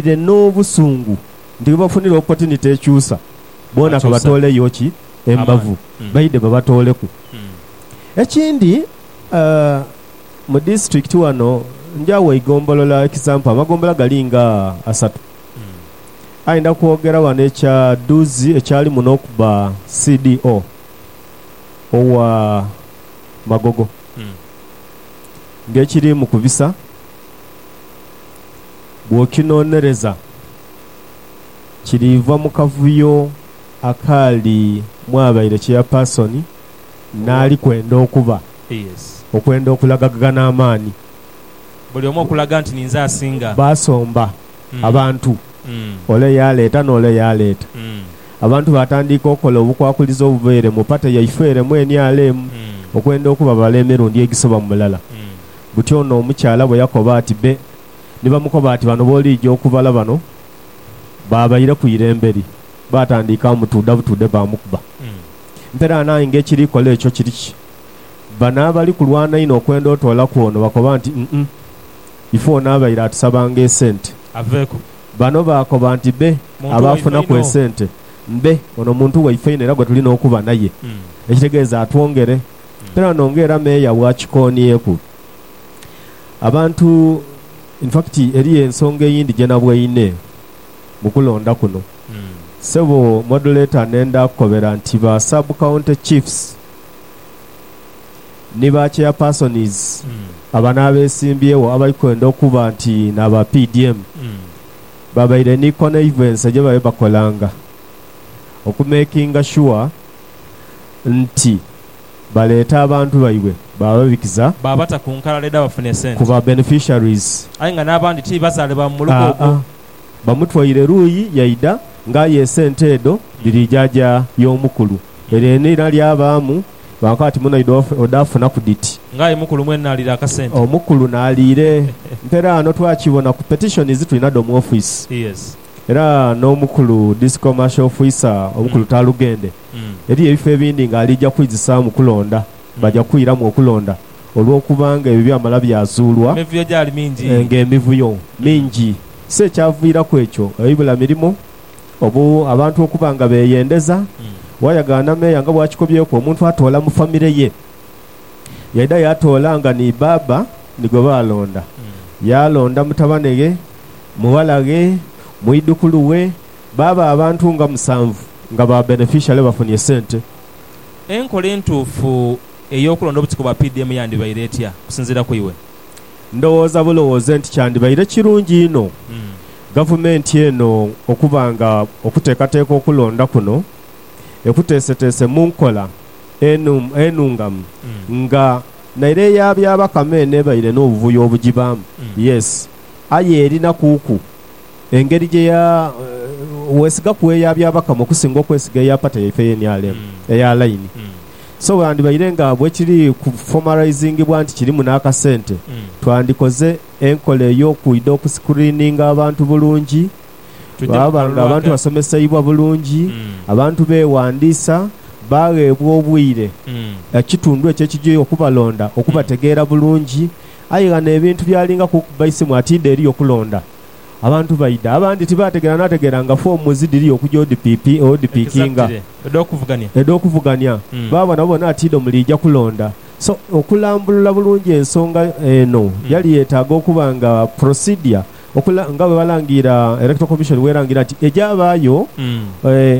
Baidhire n'obusungu nti bwebafunire opotiniti ekyusa, boona kabatooleyo ki? Embavu, baidhe babatooleku. Ekindi, mu disitulikiti wano njaawo eigombolola ekisampu, amagombolola gali nga asatu. Aye ndha kwogera wano ekya Duzi ekyalimu n'okuba CDO owa Magogo ng'ekirimu ku bisa Bw'okinonereza, kiriiva mu kavuyo akaali mwabaire cheyapaasoni n'ali kwenda okuba, okwenda okulagaghana amaani. Buli omu okulaga nti ninze asinga. Baasomba abantu, ole yaaleeta n'ole yaaleeta. Abantu baatandiika okukola obukwakulizo obubaire mu pate yaife ere mu nrm, okwenda okuba bala emirundi egisoba mu mulala. Buti ono omukyala bwe yakoba ati be ni bamukoba ati, Bano b'oliija okubala bano baabaire ku irembe li. Baatandika mutuudha butuudhe baamukuba. Mperaano aye ng'ekiri kola ekyo kiri ki? Bano abali kulwana inho okwenda otoolaku ono bakoba nti, Umm, ife ono abaire atusabanga esente. Aveeku. Bano baakoba nti, Be Muntu waife abaafunaku inho. esente. Be ono muntu waife inho era gwe tulina okuba naye. Ekitegeeza atwongere. Mperaano ng'era meeya bw'akikoonyeeku. Abantu, in fact eriyo ensonga eyindi gye nabweine mu kulonda kuno. Ssebo Modulator nenda kukobera nti ba Sub County Chiefs ni ba Chairpersons abano abesimbyewo abali kwenda okuba nti n'aba PDM babaire ni connivense gye babe bakolanga oku makinga sure nti baleeta abantu baibwe baababikiza. Baabata ku nkalala edh'abafuna ku esente. ba beneficiaries. Aye nga n'abandi ti bazaalibwa mu muluka Aa-a. ogwo. Bamutwaire luuyi yaidha nga aye esente edho dhiri jaaja y'omukulu. Eryo enira lyabaamu baakoba bati muno idho odhaafunaku dhiti? Nga aye mukulu mwene n'aliira akasente. Omukulu n'aliire. Mpera ano twakibona ku petitions tulina dho mu office. Yes. Era n'omukulu Discommercial Officer omukulu Talugende Eriyo ebifo ebindi nga alija kwizisaamu kulonda, baja kwiramu okulonda olw'okuba nga ebyo byamala byazuulwa nga emivuyo mingi. Si ekyaviiraku ekyo eibula mirimo, obu abantu okuba nga beeyendeza. Waayagaana meeya nga bw'akikobyeku, omuntu atoola mu famire ye. Yaidha yaatoola nga ni bbaabba ni gwe baalonda. Yaalonda mutabane ghe, mughala ghe, mwidhukulu we, Baaba abantu nga musanvu nga ba benefishale bafunye sente. Enkola entuufu ey'okulonda obutiko bwa PDM yandibaire etya okusinziira ku iwe? Ndowooza bulowooze nti kyandibaire kirungi inho Gavumenti eno okuba nga okuteekateeka okulonda kuno ekuteeseteese mu nkola enungamu nga naire eya Byabakama eno ebaire n'obuvuyo obugibaamu, yes, aye erina kuuku. engeri gye ya, weesiga ku eya Byabakama okusinga okwesiga eya pata yaife eye NRM eya laini. So bwandhibaire nga bwe kiri ku formalizingibwa nti kirimu n'akasente, twandikoze enkola ey'okwidha okuscreeninga abantu bulungi, baaba nga abantu basomeseibwa bulungi, abantu beewandiisa, baagheebwa obwire ekitundu ekyo ekigya okubalonda okubategeera bulungi. Aye ghano ebintu byalingaku okuba isimu ati idho eriyo kulonda. Abantu baidha, abandi tibaategeera naategeera nga foomu zidhiri okuja odhipipi, odhipikinga, edh'okuvugania, baaba nabo bona tiidho muliija kulonda. So, okulambulula bulungi ensonga eno yali yeetaaga okuba nga procedure okula, nga bwe balangira, Electoral Commission bw'erangira nti egyabaayo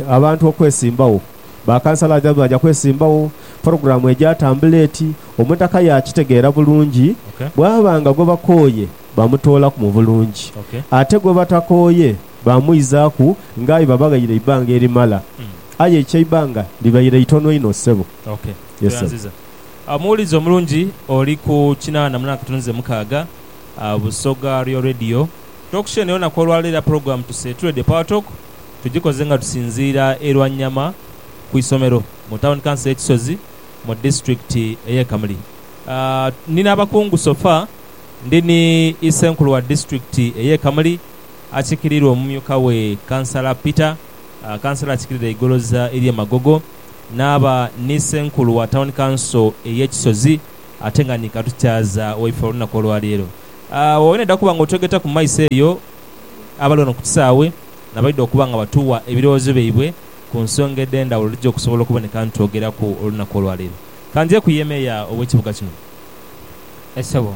abantu okwesimbagho, ba kansala aja baaja kwesimbagho, pulogulaamu egyatambula eti, omutaka yaakitegeera bulungi, bwaba nga gwebakooye Baamutoolaku mu bulungi. Ate gwe batakooye baamuizaaku ng'aye babaghaire eibanga erimala. Aye ekyo eibanga libaire itono inho, ssebo. OK. Tweyanziza. Omuwulizi omulungi oli ku kinaana munaana katono ze mukaaga, Busoga Real Radio. Tokisheni olunaku olwaleero era pulogulaamu tuse tu Radio Power Talk tugikoze nga tusinziira e Lwanyama ku isomero mu Tawuni Kanso y'e Kisozi mu disitulikiti ey'e Kamuli. Ndi n'abakungu so far. Ndi ni Isenkulu wa Disiturikiti ey'e Kamuli akikirirwa omumyuka we Kansala Peter, Kansala akikirira eigoloza ery'e Magogo, naaba ni Isenkulu wa Tawuni Kanso ey'e Kisozi ate nga ni Katukyaza waife olunaku olwaleero. Oba nedha kuba nga otwegeta ku maiso eyo, abali wano ku kisaawe nabaidha okuba nga batuwa ebirowoozo byaibwe ku nsonga edhendhawulo edhija okusobola okuboneka nitwogeraku olunaku olwaleero. Kanjeku ye Meeya ow'ekibuga kino. Aye sebo.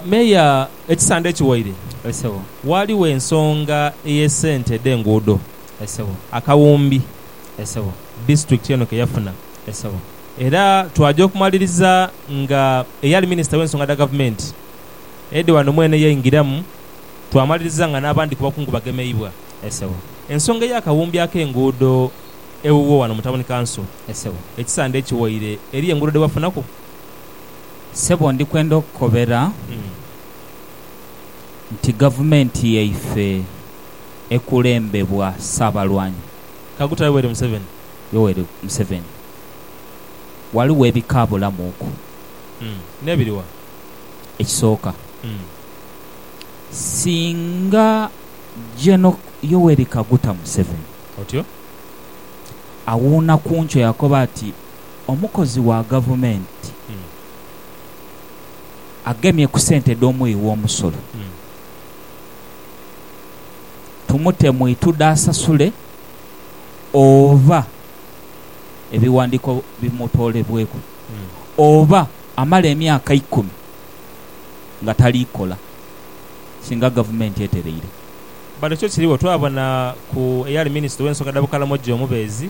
Meeya, ekisande ekiwaire. Aye sebo. Waaliwo ensonga eye sente dhe nguudo. Aye sebo. Akawumbi. Aye sebo. District eno ke yafuna. Aye sebo. Era twaja okumaliriza nga eyali minister we nsonga dha gavumenti Eddy Wanomwene yaingiramu, twamaliriza nga n'abandi ku bakungu bagemeibwa. Aye sebo. Ensonga eya kawumbi ake nguudo ewuwo wano mu town council. Aye sebo. Ekisande ekiwaire eriyo enguudo dhe wafunaku? Ssebo ndi kwenda okukobera nti gavumenti yaife ekulembebwa Ssaabalwanyi. Kaguta Yoweri Museveni. Yoweri Museveni, Ghaligho ebikaabulamuuku. N'ebiri wa? Ekisooka, singa Geno Yoweri Kaguta Museveni awuuna ku nkyo yaakoba ati, omukozi wa gavumenti agemye ku sente dh'omughi w'omusolo, tumute mu itudha asasule oba ebiwandiiko bimutoolebweku oba amale emyaka ikumi nga tali kola singa gavumenti etereire. Bano kyo kiri bwe twabona ku eyali minisita ow'ensonga dha Bukalamojjo omubeezi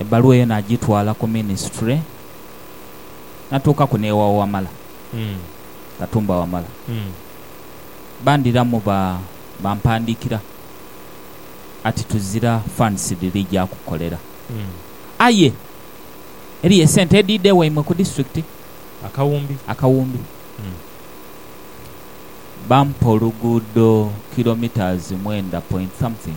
Ebbaluwa eyo nagitwala ku minisitule, natuukaku n'ewa Wamala, Katumba Wamala. Bandhiramu bampandiikira ati tuzira funds dhiri ja kukolera, aye eriyo esente edhiidha ewaimwe ku disitulikiti akawumbi. Bampa oluguudo kilometres mwenda point something.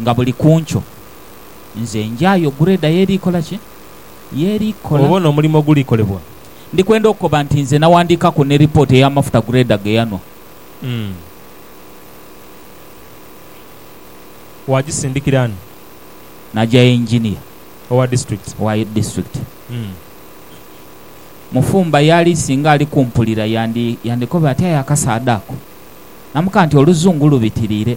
Nga buli ku nkyo, nze njaayo gureeda y'eri kola ki? Y'eri kola. Oba n'omulimo ogulikolebwa. Ndi kwenda okukoba nti nze nawandiikaku ni ripooti ey'amafuta gureeda ge yanhwa. Umm. Waagisindikira ani? Nagya gha Engineer. Owa disiturikiti? Owa disiturikiti. Umm. Mufumba y'ali singa ali kumpulira yandi, yandikoba ati, Aye akasaadha ako! Namukaa nti, Oluzungu lubitiriire.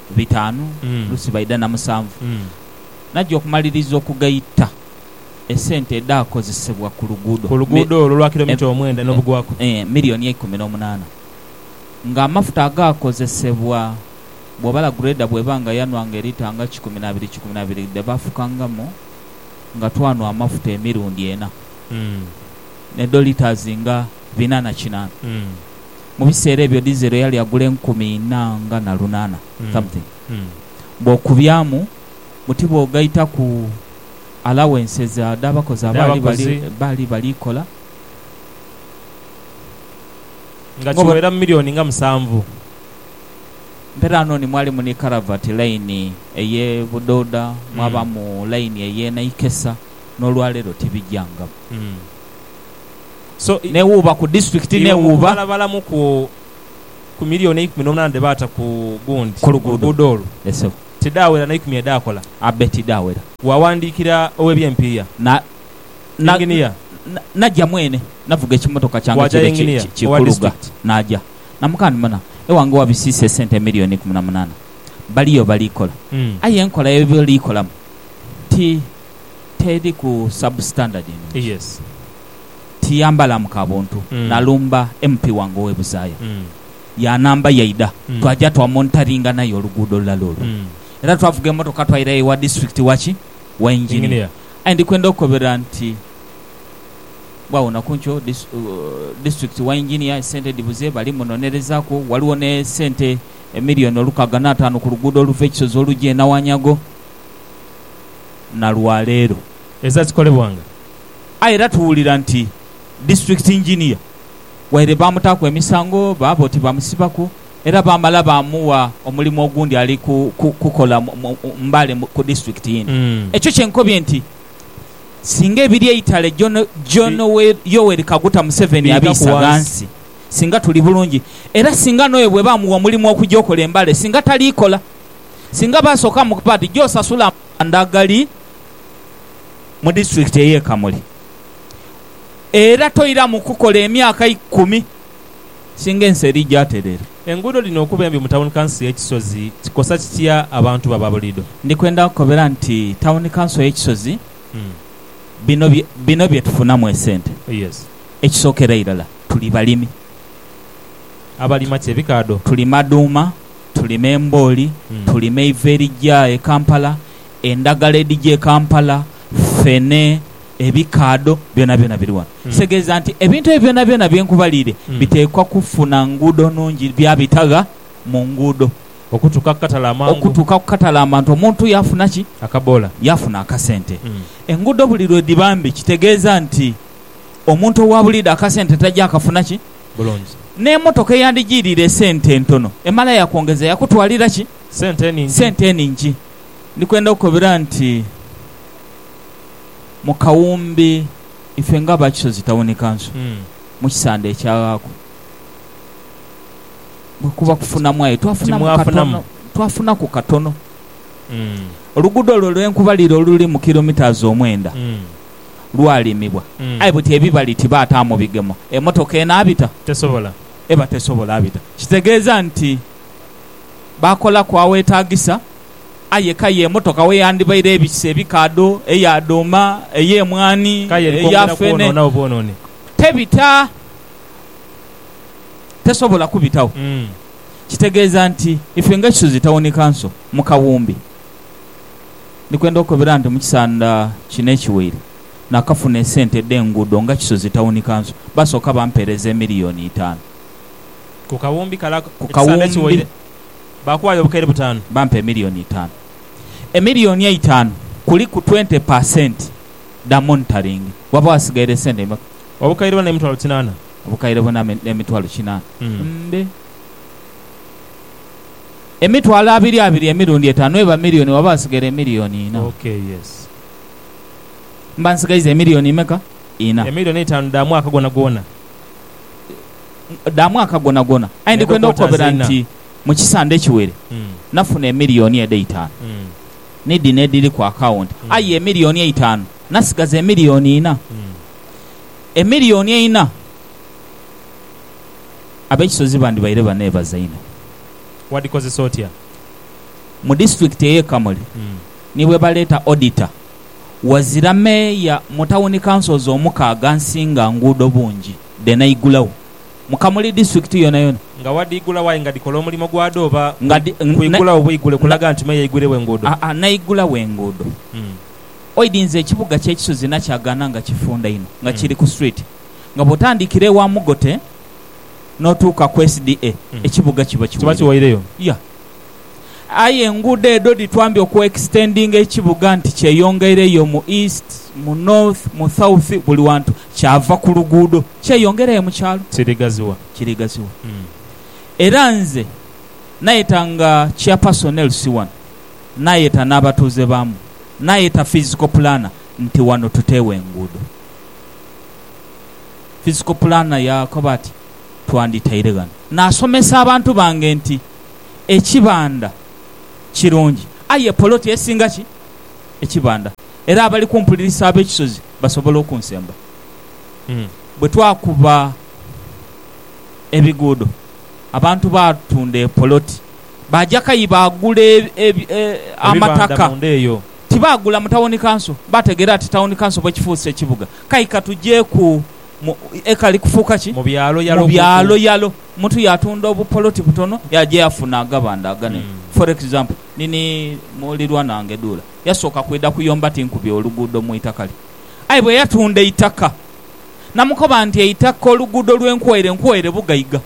bitaanu, oluusi baidha na musanvu. Naja okumaliriza okugaita esente edhaakozesebwa ku luguudo, milioni eikumi n'omunaana, ng'amafuta agaakozesebwa bw'obala gureeda bw'eba nga yanwanga elita nga kikumi na biri kikumi na biri dhe baafukangamu nga twanwa amafuta emirundi ena, n'edho litas nga bina na kinaana. Mu biseera ebyo dizero yali agula enkumi inha nga na lunaana something. Bw'okubyamu buti bw'ogaitaku allowances dh'abakozi abaali bali baali bali kola, Nga ng'obona. kiwera mu milioni nga musanvu. Mperano ni mwali mu ni Karavati line ey'e Budoda, mwabamu line ey'e Naikesa, n'olwaleero tibigyangamu. n'ewuuba ku disitulikiti n'ewuuba. Balabalamu ku miliyooni eikumi n'omunaana dhe baata ku gundi oluguudo olwo, tidhaawera na ikumi edhaakola. Abe tidhaawera. Waawandiikira ow'eby'empiiya, yinginiya. Naja mwene, navuga ekimotoka kyange kire ki kuluga naja. Namukaa nti, Muna, ewange wabisiisa esente emiliyooni eikumi na munaana. Baliyo bali kola. Aye enkola ye bali kolamu ti teri ku sub standard eno nti tiyambalamu ka buntu nalumba MP wange owe Buzaaya yanamba yaidha twaja twa monitoringa naye oluguudo lulala olwo era twavuga emotoka twairayo ewa district waki wa engineer aye ndikwenda okukobera nti bwagho nakunkyo district wa engineer esente dhibuze bali munonerezaku waliwo ne sente emillion olukaaga na ataanu ku luguudo oluva ekisozi oluja e Nawanyago na lwa leero. Eza zikolebwanga. Aye era tuwulira nti District Engineer waire baamutaaku emisango, baaba oti baamusibaku era baamala baamugha omulimu ogundi ali kukola Mbale ku District eyindi. Ekyo kye nkobye nti singa ebiri eitale John Yoweri Kaguta Museveni abiisa ghansi singa tuli bulungi era singa n'oyo bwebamugha omulimu okuja okola e Mbale singa taliikola. Singa baasooka mu part gy'osasula amanda agali mu disitulikiti ey'e Kamuli era toiramu kukola emyaka ikumi singa ensi eri gyaterera. Enguudo dhino okuba embi mu tawuni kanso y'e Kisozi kikosa kitya abantu bo ababuliido? Ndi kwenda kukobera nti tawuni kanso y'e Kisozi bino bye bino bye tufunamu esente. Ekisookera irala tuli balimi. Abalima ki? Ebikaadho? Tulima dhuuma. tulima embooli, tulima eiva erigya e Kampala, endagala edhigya e Kampala, ffene, ebikaadho, byonabyona biri wano. Kitegeeza nti ebintu ebyo byonabyona bye nkubaliire biteekwa kufuna nguudo nnungi, byabita gha mu nguudo. Okutuuka ku katale amangu. Okutuuka ku katale amantu, omuntu yaafuna ki? Akaboola. Yaafuna akasente. Enguudo buli lwe dhiba mbi kitegeeza nti omuntu owa buliidho akasente taja kafuna ki? bulungi. N'emotoka eyandijiiriire esente entono emala yakwongeza yakutwalira ki? Sente eningi. Ndi kwenda okukobera nti mu kawumbi ife nga aba Kisozi Tawuni Kanso mu kisande ekyaghaaku bwe kuba kufunamu aye twafunamu katono, twafunaku katono. Oluguudo olwo lwe nkubalira oluli mu kilometres omwenda. lwalimibwa, aye buti ebibali tibaataamu bigemo, emotoka enaabita? Tesobola. Eba tesobola bita. Kitegeeza nti baakolaku aweetaagisa, aye kaya emotoka we yandibaire ebise ebikaadho, eya dhuuma, ey'emwaani, Kaya eri eya kwongera feene, kwonoonagho bwonooni. tebita. Tesobola kubitagho. Kitegeeza nti ife nga Kisozi Tawuni Kanso mu kawumbi, Ndi kwenda okukobera nti mu kisanda kino ekiwaire nakafuna esente edh'enguudo nga Kisozi Tawuni Kanso baasooka bampeereza emiliyoni itaanu. Ku kawumbi kale ekisanda ekiwaire baakuwaayo obukaire butaanu. Bampa emiliyoni itaanu. Emiliyoni eitaanu kuliku twente pa senti dha monitaringi. Waba waasigaire sente imeka? Obukaire buna emitwalo kinaana. Obukaire buna emitwalo kinaana. Mbe. Emitwalo abiri abiri emirundi etaanu eba milioni waba wasighaire emilioni ina. Ok yes. Mba nsighaiza emilioni meka? Ina. Emilioni eitaanu dha mwaka gwonagwona. Dha mwaka gwonagwona. Aye ndi kwenda okukobera nti mu kisande ekiwere nafuna emilioni edho eitaanu ni dhino edhiri ku akawunti. Aye emilioni eitaanu nasighaza emilioni ina. Emilioni eina. ab'ekisozi bandibaire baneebaza inho. Wadhikozesa otya? Mu disitulikiti ey'e Kamuli ni bwe baleeta odita wazira meeya mu tawuni councils omukaaga nsinga nguudo bungi dhe naigulagho mu Kamuli disitulikiti yonayona. Nga wadhiigulagho aye nga dhikola omulimo gwadho oba kwigulagho bwigule kulaga nti meeya aigwiiregho enguudo? Aa naigulagho enguudo. Oidhinza ekibuga ky'ekisozi nakyo agaana nga kifunda inho nga kiri ku street. nga bw'otandikira ewa Mugote n'otuuka ku SDA, ekibuga kiba kiwaireyo. Aye enguudo edho dhitwambya okwekisitendinga ekibuga nti kyeyongeireyo mu East, mu North, mu South, buli wantu. Kyava ku luguudo kyeyongerayo mu kyalo. Kirigaziwa. Era nze nayeta nga Chairperson LC wano, nayeta n'abatuuze baamu, nayeta Physical Planner nti wano tuteewo enguudo. Physical Planner yaakoba ati, Twandhitaire ghano naasomesa abantu bange nti ekibanda kirungi aye poloti esinga ki ekibanda era abali kumpulirisa ab'e Kisozi basobola okunsemba. Bwe twakuba ebiguudo abantu baatunda epoloti baaja kayi baagula amataka. Tibaagula mu tawuni kanso, baategeera ati tawuni kanso bwekifuuse ekibuga, kai ka tujeeku mu ekali kufuuka ki? Mu byalo yalo kuku. Mu byalo yalo. Omuntu yaatunda obupoloti butono yaaja yaafuna agabanda aganene. For example, nini mulirwana wange Duula, yasooka kwidha kuyomba tinkubye oluguudo mu itaka lye. Aye bwe yatunda eitaka, namukoba nti eitaka oluguudo lwe nkuwaire nkuwaire bugaiga.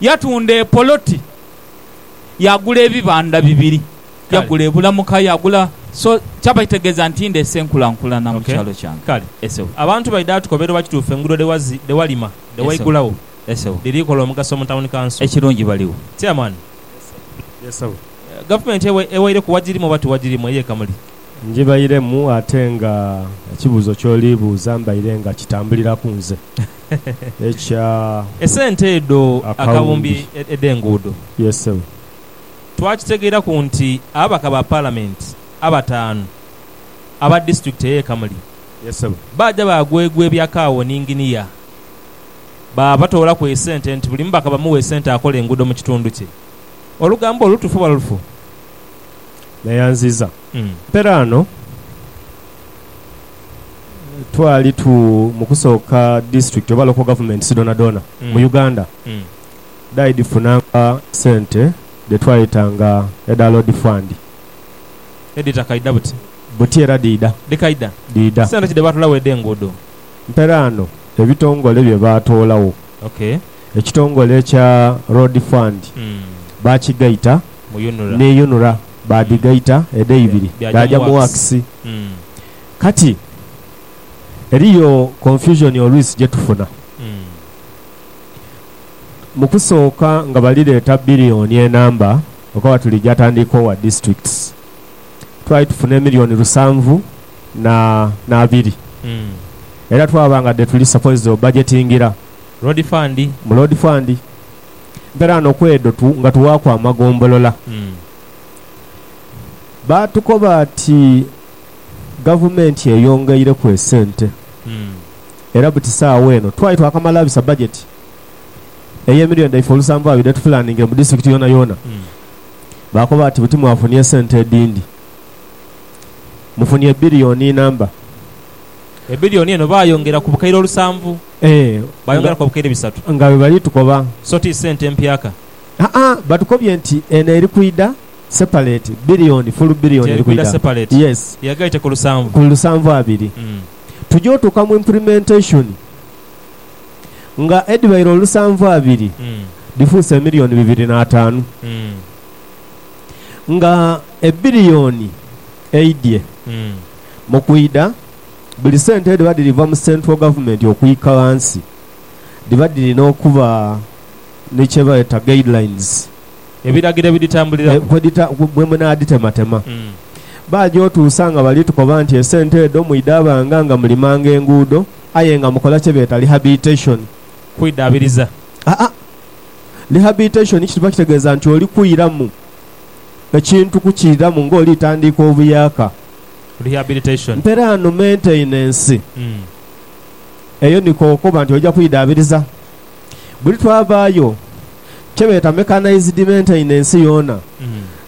Yatunda epoloti, yaagula ebibanda bibiri. Yagula ebula muka yagula so kyaba kitegeza ntinde ese nkula nkulana mukyalo kyange kale esebo abantu baidha atukobera oba kituufu engudo dhewazi dhewalima dhewaigulagho esebo dhiri kola omugaso mu town council ekirungi baligho chairman esebo gavumenti ewaireku wagirimu oba tiwagirimu eyo ekamuli. Njibairemu ate nga ekibuzo kyoli buuza mbaire nga kitambuliraku nze ekya esente edho akawumbi edhenguudo. Yes sebo. twakitegeeraku nti ababaka ba Palamenti abataanu aba disitulikiti ey'e Kamuli baaja baagwegwa ebya kaawo ni nginiya. Baabatoolaku esente nti buli mubaka bamuwe esente akole enguudo mu kitundu kye. Olugambo olwo lutuufu oba lufu? Neyanziza mperaano twali tu mu kusooka disitulikiti oba local governments dhoonadhoona mu Uganda. dhaidhifunanga sente dhe twayeta nga edha Load Fund. Edhita kaidha buti? Buti era dhiidha. Dhi kaidha? Dhiidha. Sente ki dhe baatoolawo edh'enguudo? Mperaano ebitongole bye baatoolawo. Ok. Ekitongole ekya Road Fund baakigaita Mu UNRA. ni UNRA baadhigaita edheibiri Bya, dhaaja dhaaja mu mu Works. Works. Mm. Kati eriyo confusion oluisi gye tufuna. Mm. Mu kusooka nga bali leeta billioni enamba okaba tuli ja tandiika owa districts, twali tufuna emillioni lusanvu na nabiri era twaba nga dhe tuli supposed o budgetingira Road fund. mu Road fund. Mpera no kwedho tu nga tuwaaku amagombolola. Baatukoba ati gavumenti eyongeireku esente. era buti saagho eno twali twakamala abisa bajeti ey'emilio dhaife olusanvu abiri etufulaninge mu disitirikiti yoonayoona. Baakoba bati, Buti mwafunie esente edhindi. Mufunie ebbilioni inamba. Ebbilioni eno baayongera ku bukaire olusanvu. Ee, nga, Baayongeraku obukaire bisatu. nga bwe bali tukoba. So ti sente mpyaka. Ha-a, batukobye nti eno eri kwidha sepaleti, bbilioni, fulu bbilioni Nti eri eri kwidha kwidha. sepaleti. Yes. Yagaite ku lusanvu. Ku lusanvu abiri. Mm. tuja otuuka mu implementation nga edhibaire olusanvu abiri dhifuuse emiliyoni bibiri n'ataanu nga ebbiliyoni eidhye mu kwidha buli sente edhiba dhiri va mu central government okwika ghansi dhiba dhirina okuba ni kye beeta guidelines. Ebiragiro ebidhitambuliramu. Bwe munaadhitematema, baaja otuusa nga bali tukoba nti esente edho mwidhaabanga nga mulimanga enguudo aye nga mukola kye beeta lihabiteshoni. Kwidhaabiriza. Aa. Lihabiteshoni kiba kitegeeza nti oli kwiramu ekintu kukiiramu ng'oli tandiika obuyaaka. Rehabilitation. Mperaano menteynensi. Eyo niko okoba nti oja kwidhaabiriza. Buli twavaayo kye beeta mechanized maintenance yoona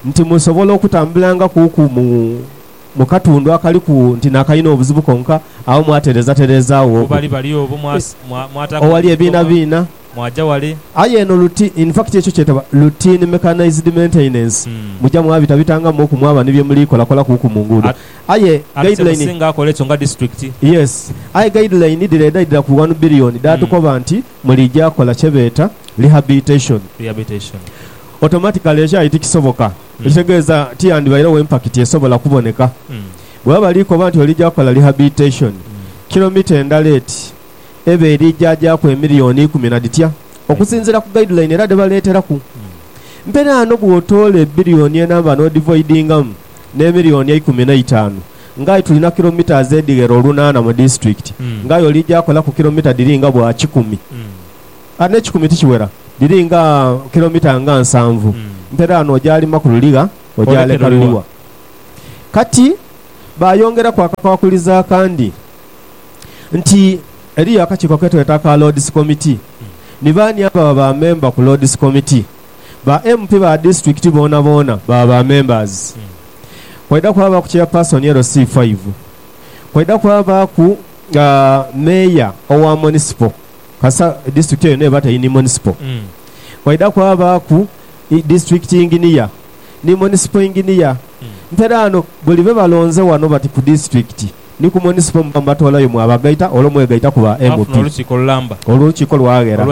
nti musobola okutambulanga ku ku mu mu katundu akaliku nti nakalina obuzibu konka agho mwaterezatereeza agho Ghebali bali obwo mwataku owali ebikoma ebiinabiina mwaja wale. Aye eno luti in fact ekyo kyetebwa routine mechanized maintenance muja mwabitabitangamu oku mwaba ni bye muli kolakola ku ku mu nguudo At aye ate guide line kyemusinga akola ekyo nga district. Yes. Aye guide line dhireeda idhira ku one billion dhaatukoba nti. Mulija kola kye beeta rehabilitation. Rehabilitation. Automatically ekyali tikisoboka, ekitegeeza tiyandibairegho impakiti esobola kuboneka. Bwebaba bali koba nti olija kola rehabilitation, kilomita endala eti eba erija jaaku emilioni ikumi na dhitya? Okusinziira ku guideline era dhe baleeteraku. Mperaano bwotoola ebilioni enamba n'odhivoidingamu. n'emiliyoni eikumi n'eitaanu, ng'aye tuli na kilometres edhighera olunaana mu disitulikiti, ng'aye oli gyakolaku kilomita dhiri nga bwa kikumi, kati n'ekikumi tikiwera, dhiri nga kilomita nga nsanvu, mpera ano ogyalima ku luligha ogyaleka luliwa? Kati baayongeraku akakwakulizo akandi nti eriyo akakiiko ke tweta aka Lords Committee, ni baani ababa ba memba ku Lords Committee? Ba MP ba disitulikiti boonaboona baba ba members. Kwaidha kwabaaku chairperson LC five. Kwaidha kwabaaku Mayor owa Moniciple kasita disitulikiti eyo n'eba teri ni Moniciple. Kwaidha kwabaaku disitulikiti engineer ni Moniciple engineer. Mperaano buli be balonze wano bati ku disitulikiti. ni ku Monisipo muba mubatwalayo mwabagaita olwo mwegaita ku ba MP. Olwo olukiiko lwaghera.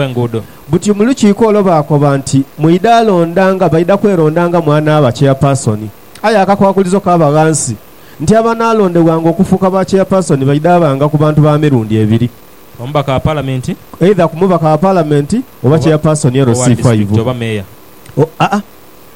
Buti mu lukiiko olwo baakoba nti, Mwidha londanga, baidha kwerondanga mu anaaba Cheyapaasoni. Aye akakwakulizo kaaba ghansi nti abanaalondebwanga okufuuka ba Cheyapaasoni baidha banga ku bantu ba mirundi ebiri, eidha ku Mubaka wa Palamenti oba Cheyapaasoni LC5.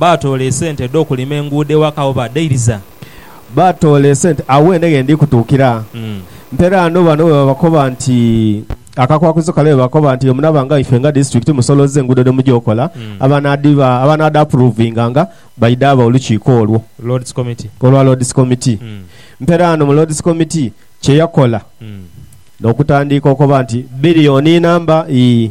Baatoola esente edh'okulima enguudo ewaka wo baadhairiza. Baatoola esente agho ene ghe ndhi kutuukira. Mpera ano bano bwe babakoba nti akakwakulizo kale bwe bakoba nti omunaaba nga ife nga disitulikiti musolooze enguudo dhe mugya okola abanaadhiba abanaadhaapuruvinganga baidhaaba olukiiko olwo olwa Loodisi Komiti. Mpera ano mu Loodisi Komiti kye yakola n'okutandiika okoba nti biliyoni inamba ii.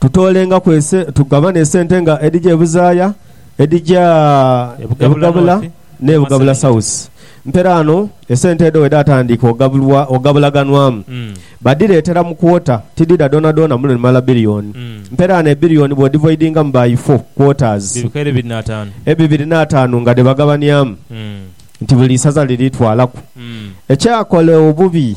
Tutoolengaku ese, tugabane esente nga edhija e buzaaya, edhija e Bugabula n'e Bugabula Sausi. Mperaano esente edho bwe dhaatandiika ogabulwa, ogabulaganwamu, badhireetera mu kwota, tidhidha dhoonadhoona muno ni mala biliyoni. Mperaano ebiliyoni bw'odhivoidingamu by ifoo, quarters, ebibiri n'ataanu nga dhe bagabanyamu nti buli isaza liri twalaku ekyakola obubi.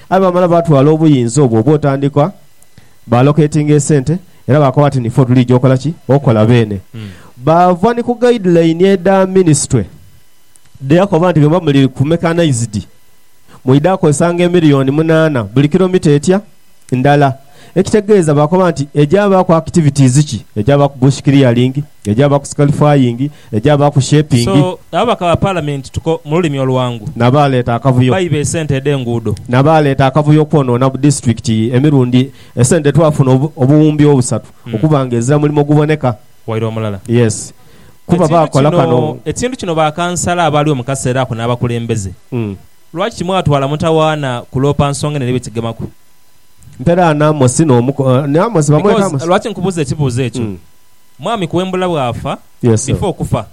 Aye baamala baatwala obuyinza obwo obwotandikwa, baaloketinga esente, era baakoba ati ni fo tuliija okola ki? Okola beene. Baava ni ku guideline edha minisitule dheyakoba nti bwemuba muli ku mechanized, mwidha kozesanga emiliyoni munaana buli kilomita etya? Ndala. Ekitegeeza baakoba nti egyabaaku activities ki? Egyabaaku bush clearing, egyabaaku scalifying, egyabaaku So shepingi. ababaka ba Palamenti tuko mu lulimi oluwangu. N'abaaleeta akavuyo. Baiba esente edh'enguudo. N'abaaleeta akavuyo okwonoona bu disiturikiti emirundi esente dhe twafuna obuwumbi obusatu okuba nga ezira mulimo guboneka. Waire omulala. Yes. Kuba Ekintu baakola kino, kano. ekintu kino bakansala abaaliwo mu kaseera ako n'abakulembeze, lwaki timwatwala mutawaana kuloopa nsonga eno eri bwe kigemaku? Mperaana Amosi n'omu, ni Amosi, bamweta Because, Amosi. lwaki nkubuuza ekibuuzo ekyo? Mwami Kuwembula bwafa, Yes sir. before okufa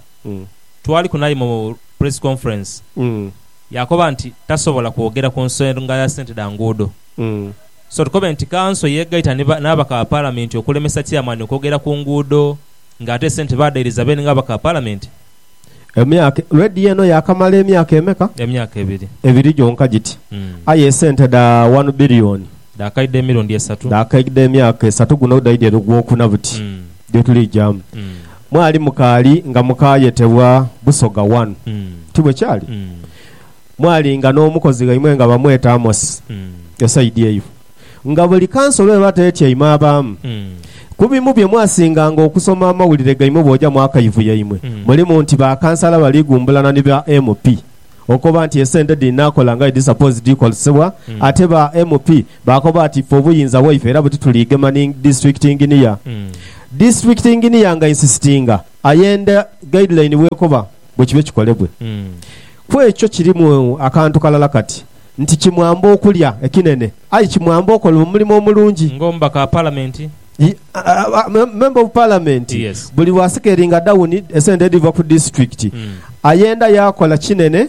twaliku naye mu press conference yakoba nti tasobola kwogera ku nsonga ya sente dha nguudo so tukobe nti kanso yegaita ni ba n'abaka ba palamenti okulemesa chairman okwogera ku nguudo nga ate esente badairiza beene nga abaka ba palamenti. Emyaka, lwediya eno yaakamala emyaka emeka? Emyaka ebiri. Ebiri gyonka giti. Aye esente dha wanu biliyoni. Dhaakaidha emirundi esatu. Dhaakaidha emyaka esatu. Guno dhaidha eno gwokuna buti gyetulijamu. Mwali mukaali nga mukaayetebwa Busoga wanu. Ti bwe kyali? Mwalinga n'omukozi ghaimwe nga bamweta Amosi, esaidi eyo. Nga buli kansolo eba tetyaime abaamu ku bimu bye mwasinganga okusoma amawulire gaimwe bw'oja mu akayivu yaimwe, mulimu nti ba kansala bali gumbulana ni ba MP okoba nti esente dhinaakola nga edhisapozi dhikozesebwa ate ba MP baakoba ati ffe obuyinza bwaife era buti tuliigema ni Disitulikiti Inginiya. Disitulikiti Inginiya nga insisitinga ayenda guideline bw'ekoba bwe kibe kikolebwe. Ku ekyo kirimu akantu kalala kati. Nti kimwamba okulya ekinene. Aye kimwamba okola omulimo omulungi. Ng'omubaka wa Palamenti. Member of Parliament. Yes. Buli lwa sikeringa dawuni esente edhiva ku disitulikiti, ayenda yaakola kinene,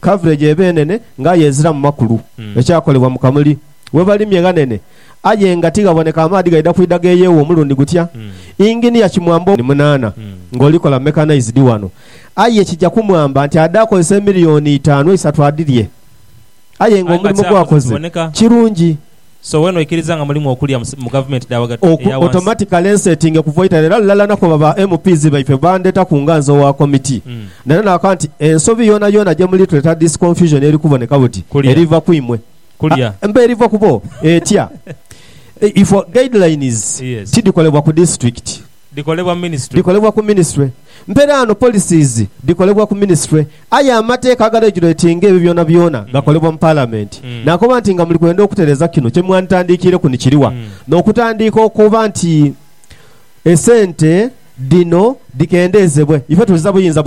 coverage eba enene nga aye eziramu makulu. Ekyakolebwa mu Kamuli, webalimye ghanene aye nga tighaboneka amaadhi gaidha kwidha geeyeewa omulundi gutya. Engineer kimwamba. Munaana ng'olikola mechanized wano. Aye kija kumwamba nti adhe akozese emiliyoni itaanu eisatu adhirye. Aye nga omulimo gw'akoze kirungi. So wena oikiriza nga mulimu okulya mu gavumenti dha ghagati eya wansi? Automatically nsetinge kuva eitale era lulala nakoba ba MPs baife bandhetaku nga nze owa committee nera nakoba nti ensobi yoonayoona gyemuli tuleeta this confusion eri kuboneka buti eriva kwimwe mba eriva kubo etya if guidelines tidhikolebwa ku district. dhikolebwa ministry. Dhikolebwa ku ministry. Mperaano policies dhikolebwa ku ministry. Aye amateeka agareguletinga ebyo byonabyona gakolebwa mu Palamenti. Naakoba nti nga muli kwenda okutereeza kino kye mwanditandiikiireku ni kiri wa? N'okutandiika okukoba nti esente dhino dhikendeezebwe. Ife tuzira buyinza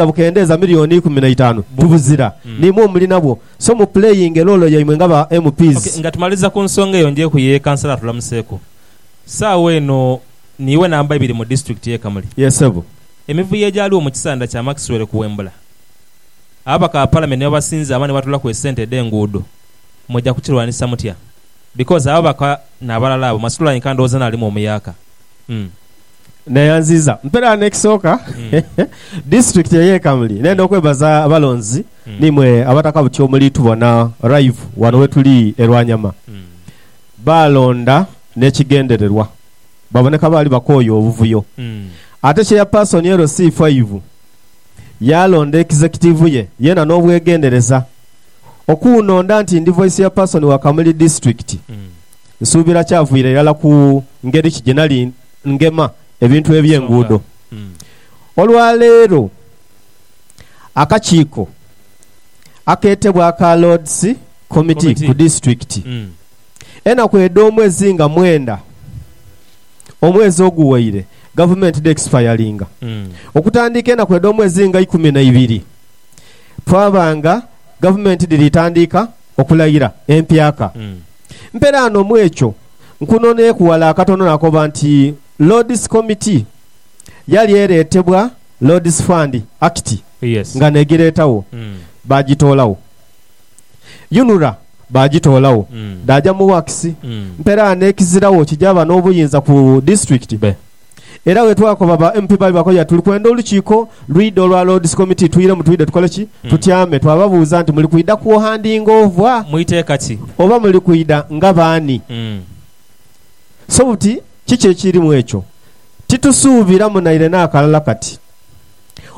bukendeeza miliyooni ikumi na itaanu. Tubuzira. Niimwe omuli nabwo. So mu playinge loolo yaimwe nga ba MPs. Ok, nga tumaliza ku nsonga eyo njeeku ye Kansala atulamuseeku. Saagho eno niiwe namba ibiri mu disitulikiti ye Kamuli. Ye sebo. Emivuyo egyaaliwo mu kisanda kya Maxwell kuwembula ababaka ba palamenti nebabasinza ama nebatuulaku esente edhe nguudo muja kukirwanisa mutya because ababaka nabalala abo masitula yenka ndowooza naalimu omuyaaka umm. Neyanziiza mperagho nekisooka disitulikiti eye Kamuli nenda okwebaza abalonzi nimwe abataka buti omulitubona live wano wetuli e Lwanyama. Baalonda n'ekigendererwa. Baboneka baali bakooye obuvuyo. Ate Chairperson LC Faivu yaalonda ekizekitiivu ye yeena n'obwegendereza. Okuunonda nti ndi Vice Chairperson wa Kamuli Disitulikiti, nsuubira kyavwira irala ku ngeri ki gye nali ngema ebintu eby'enguudo. Olwaleero akakiiko akeetebwa aka Lords, Komiti ku disitulikiti enaku edh'omu ezi nga mwenda omwezi oguwaire gavumenti dhe expiringa. Okutandiika enaku edh'omu ezi nga ikumi na ibiri twaba nga gavumenti dhiri tandiika okulaira empyaka. Mperaano mu ekyo nkunoneeku wala akatono nakoba nti Lord's Committee yali eretebwa Lord's Fund Act nga negiretagho bagitoolagho. Yunura baagitoolagho dhaaja mu works. Mperaano ekiziragho kijaaba n'obuyinza ku disitulikiti. Era bwe twakoba ba MP baali bakoya tuli kwenda olukiiko lwidha olwa Lords Committee twiremu twidhe tukole ki? Tutyame. Twababuuza nti muli kwidha kuohandinga ovwa? Mu iteeka ki? Oba muli kwidha nga baani? So buti kiki ekiri mu ekyo? Titusuubiramu naire n'akalala kati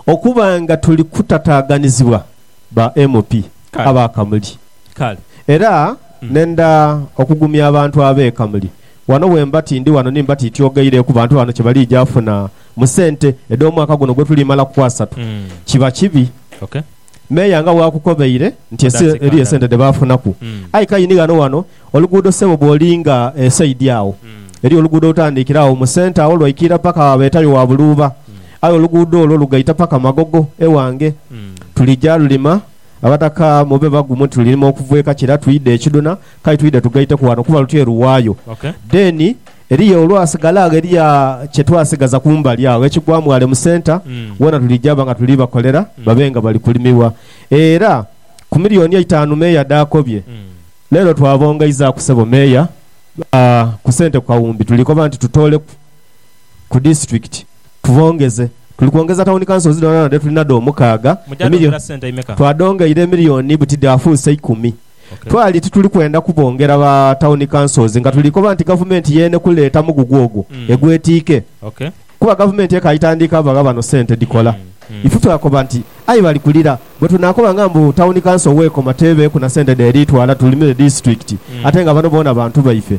okuba nga tuli kutataaganizibwa. ba MP Kale. aba Kamuli. Kale. Era nenda okugumya abantu abe Kamuli. Wano bwemba tindi wano nimba tityogeire ku bantu bano kyebalija funa mu sente edh'omwaka guno gwetuli mala ku asatu, kiba kibi Okay. Meeya nga bwakukobeire nti ese That's it, eriyo Kandala. esente dhebafunaku. Mm. Aye kayini ghano wano Oluguudo sebo bwolinga esaidi agho eriyo oluguudo olutandikira agho mu centre agho lwaikiira paka agho abetayo wa buluuba aye oluguudo olwo lugaita paka magogo ewange tulija lulima abataka mube bagumu nti lulirima okuva ekakira twidha ekidhuna kale twidha tugaiteku wano kuba luti eruwayo then eriyo olwasigala agho eriyo kyetwasigaza kumbali agho ekigwamu wale mu centre wona tulija ba nga tuli bakolera babe nga bali kulimibwa era ku million eitaanu mayor dhaakobye. Leero twabongaizaaku sebo Meeya ku sente ku kawumbi tuli koba nti tutooleku ku disitulikiti tubongeze. Tuli kwongeza tawuni kansozi dhoonadhoona dhe tuli nadho omukaaga. Twadhongeire emiliyoni buti dhaafuuse ikumi. Twali tituli kwenda kubongera ba tawuni kansozi nga tuli koba nti gavumenti y'enekuleta mugugu ogwo egwetiike. Kuba gavumenti ekaali tandiika bagha bano sente dhikola. Ife twakoba nti, Aye bali kulira, bwe tunaakobanga mbu tawuni kanso w'ekoma teebeeku na sente dh'eriitwala tulimire disitulikiti ate nga bano boona bantu baife,